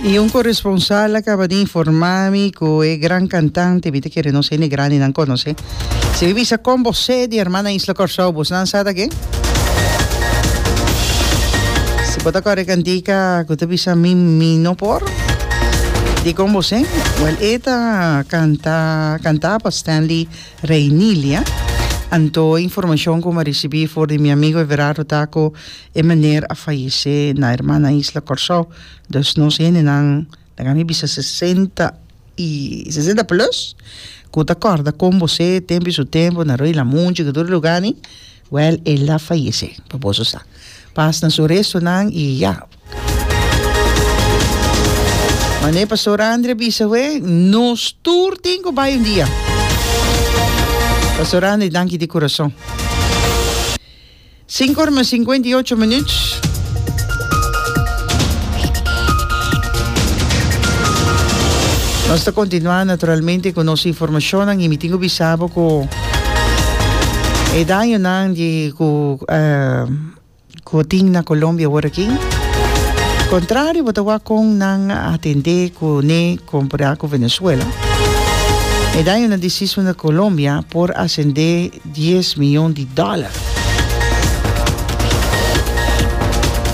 Y un corresponsal a caba di informa mi cu e gran cantante, mi ta kere nos hende grandi nan conoce, si mi bisa con bo se di herman na isla Corsou, bos nan sa ta ke? Si bo ta core cantica cu ta bisa mi, mi no por, di con bo se? Well, e ta canta, canta pa Stanley Reinelia, anto informacion cu mi a ricibi for di mi amigo Everardo ta cu E meneer a fayesé na hermana isla Kòrsou, dus nos hendenan laga mi bisa sesenta i sesenta plus ku ta kòrda kon bosé tempu i su tempu na Rui Lamunchi ku tur e lugani, wèl el a fayesé pa boso sa. Pas na su restunan i ya. Mané Pastor Andri a bisa awé, nos tur tin ku bai un dia. Pastor Andri danki di kurason. Sinku or mas sinkuenta i ocho minut. Nos ta kontinuá naturalmente ku nos informashonnan i mi tin ku bisa bo ku e dañonan di ku ku tin na Colombia aworakí kontrario bo ta wak kon nan a atendé kuné kompará ku Venezuela e dañonan di sismo na Colombia por asendé. dies miyon di dòler.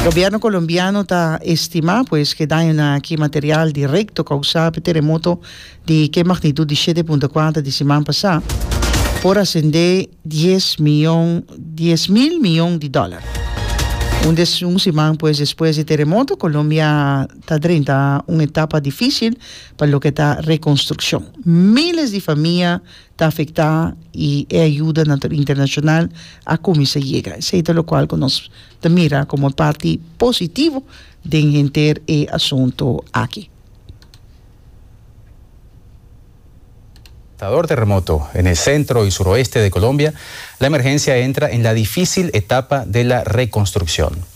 Gobièrnu Kolombiano ta estimá pues ku e daño na aki material direkto kousá pa e teremoto di ke magnitut di shete punto kuater di siman pasá por asendé dies miyon dies mil miyon di dòler. Un des un siman pues despues di e teremoto Kolombia ta drenta un etapa difísil pa loke ta rekonstrukshon. Míles di famia ta afecta y e ayuda nan ta internacional a cuminsa yega. Esey ta locual cu nos ta mira como parti positivo den henter e asunto aki. Dor terremoto en e centro y suroeste de Colombia, la emergencia entra en la dificil etapa de la reconstruccion.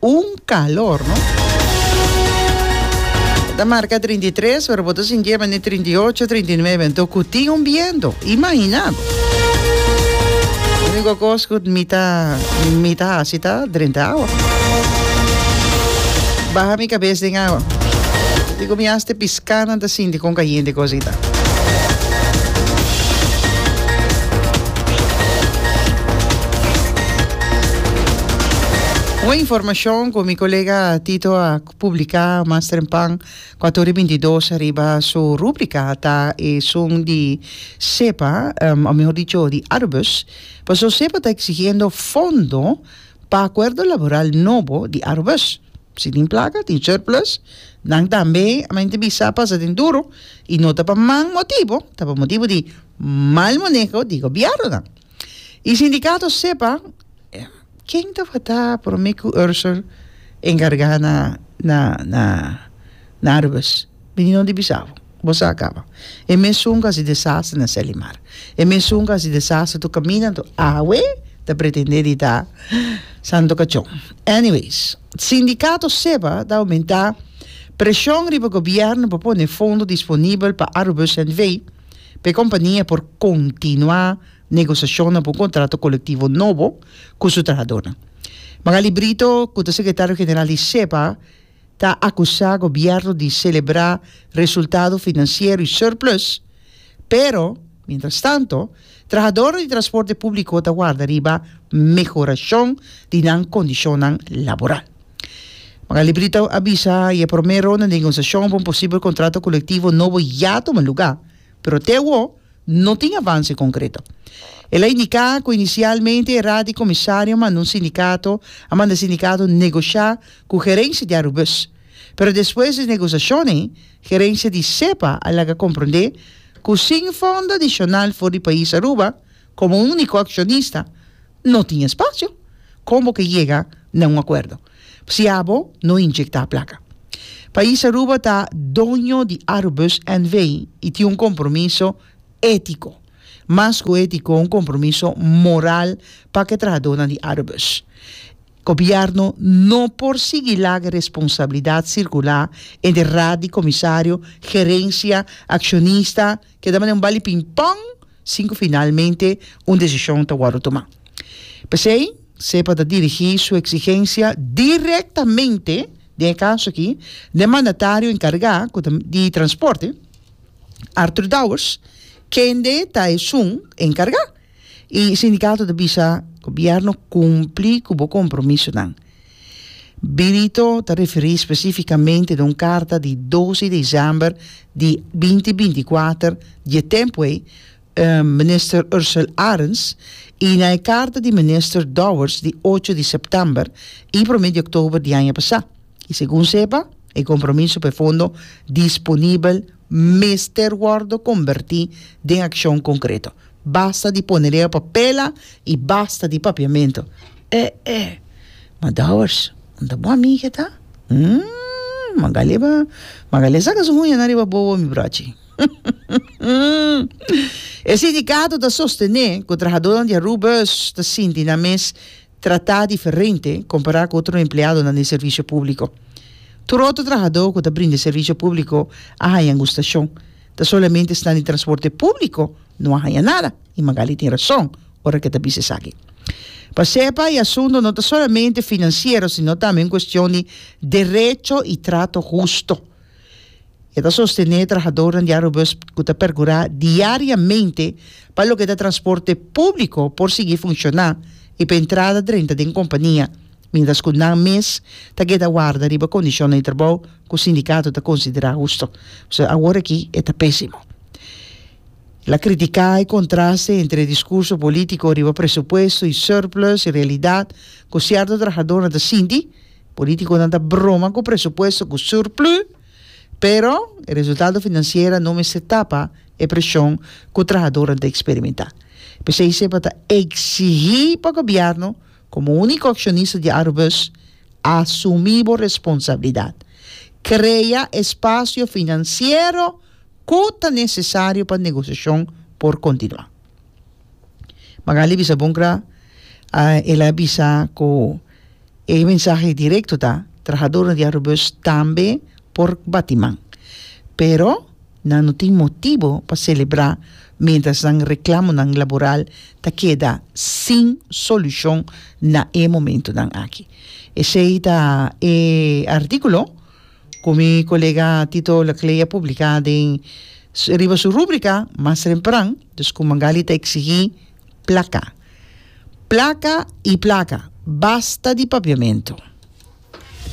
Un calor no. Ta marca trinta i tres pero bo ta sintié bendí trinta i ocho, trinta i nuebe anto cu tin un biento. Imagina bo. Unico cos cu mi ta mi ta haci ta drenta awa. Baha mi cabes den awa. Dico mi haste piscado. Canan ta sinti con cayente cosa y ta. Un informacion cu mi colega Tito a publica mas trempan cu a turi binti dos riba su rubrica ta esun di Sepa o mejor dicho di Arubus paso Sepa ta exigiendo fondo pa acuerdo laboral nobo di Arubus. Si tin plaka, tin surplus. Nan tambe a mente bisa pasa den duru i no ta pa man motibu, ta pa motibu di mal maneho di gobièrnunan. E sindikato sepa ken tabata promé ku Ursur enkargá na Aruwis. Meninon di Bisavo, bo sa akaba. E mesun ku hasi desastre na Selimar. E mesun ku hasi desastre tur kaminda anto awe ta pretendé di ta Santo Kachon. Anyways, sindikato sepa ta oumentá preshon riba gobièrnu pa pone fondo disponibel pa Arubus NV. pa e kompania por kontinuá negosiashonnan pa un kontrato kolektivo nobo ku su trahadornan. Magaly Brito, ku ta sekretario general di sepa, ta akusá gobièrnu di selebrá resultado finansiero i surplus, pero, mientrastanto, trahadornan di transporte públiko ta warda riba mehorashon di nan kondishonnan laboral. Magaly Brito a bisa e promé ronda negosiashon pa un posibel kontrato kolektivo nobo ya tuma lugá, pero te awor, No tin avanse konkreto. El a indiká ku inisialmente e Raad di Komisario a manda un sindikato a manda sindikato negoshá ku gerensia di Arubus, pero despues di negosashonnan gerensia di Sepa a laga komprondé ku sin fondo adishonal for di pais Aruba komo un úniko akshonista, no tin espacio. Con bo ke yega na un acuerdo si abo no inyecta placa? Pais Aruba ta doño di Arubus NV. y tin un compromiso etico. Mas cu etico un compromiso moral pa ke trahadornan di Arubus. Gobierno no por sigui laga responsabilidad circular entre raad di comisario, gerencia, accionista, Keda manera un bali pingpong sin ku finalmente un desishon ta wòrdu tumá. P'esei, Cepa ta dirigí su eksigensia direktamente, den e kaso akí, n'e mandatario enkargá ku ta di transporte, Arthur Dowers, kende ta esun enkargá. E sindikato ta bisa, Gobièrnu kumpli ku bo kompromisonan. Benito ta referí spesifikamente na un karta di dos di desèmber di binti binti kuater di e tempu ei minister Ursel Arends i na e karta di minister Dowers di ocho di sèptèmber i promé di òktober di aña pasá. I segun Sepa, e kompromiso pa e fondo disponibel mester wòrdu kombertí den akshon konkreto. Basta di ponedeo pa pela i basta di papiamentu. E e! Ma Dowers, no ta bon ami ke ta? Mmmm, Magali a Magali a saka su huña nan riba bobo mi brochi. E sindikato ta sostené ku trahadónan di Aruba ta sinti nan mes tratá diferente kompará ku otro empleadonan di servisio públiko. Tur otro trahadó ku ta brinda e servisio públiko a haña angustashon, ta solamente esnan di transporte públiko no a haña nada, i Magaly tin rason ora ke e ta bisa esaki. Pas'e pa e asunto no ta solamente finansiero sino tambe un kuestion di derecho i trato husto. E ta sostené e trahadornan di Aerobus ku ta pergurá diariamente pa loke ta transporte públiko por sigui funshoná i pa entrada drenta den kompania, miéntras ku nan mes ta keda warda riba kondishonnan di trabou ku sindikato ta konsiderá husto. P'esei awor aki e ta pésimo. El a kritiká e kontraste entre diskurso polítiko riba presupuesto i surplus i realidat ku sierto trahadornan ta sinti Politiconan ta broma cu presupuesto cu surplu, pero e resultado financiera no mester tapa e presion cu trahadoran ta experimenta. P'esey Cepa ta exigi pa Gobierno, como unico accionista di Arubus, asumi bo responsabilidad. Crea e spacio financiero cu ta necesario pa negociacion por continua. Magalie bisa bon gra uh el a bisa cu e mensahe directo ta trahadornan di Arubus tambe por bati man pero nan no tin motibo pa celebra mientras nan reclamonan laboral ta keda sin solucion na e momentonan aki. Esey ta e articulo. Ku mi kolega Tito Laclée a publiká den riba su rúbrika Mas Trempran, dus ku Mangali ta eksigí plaka, plaka i plaka, basta di papiamentu.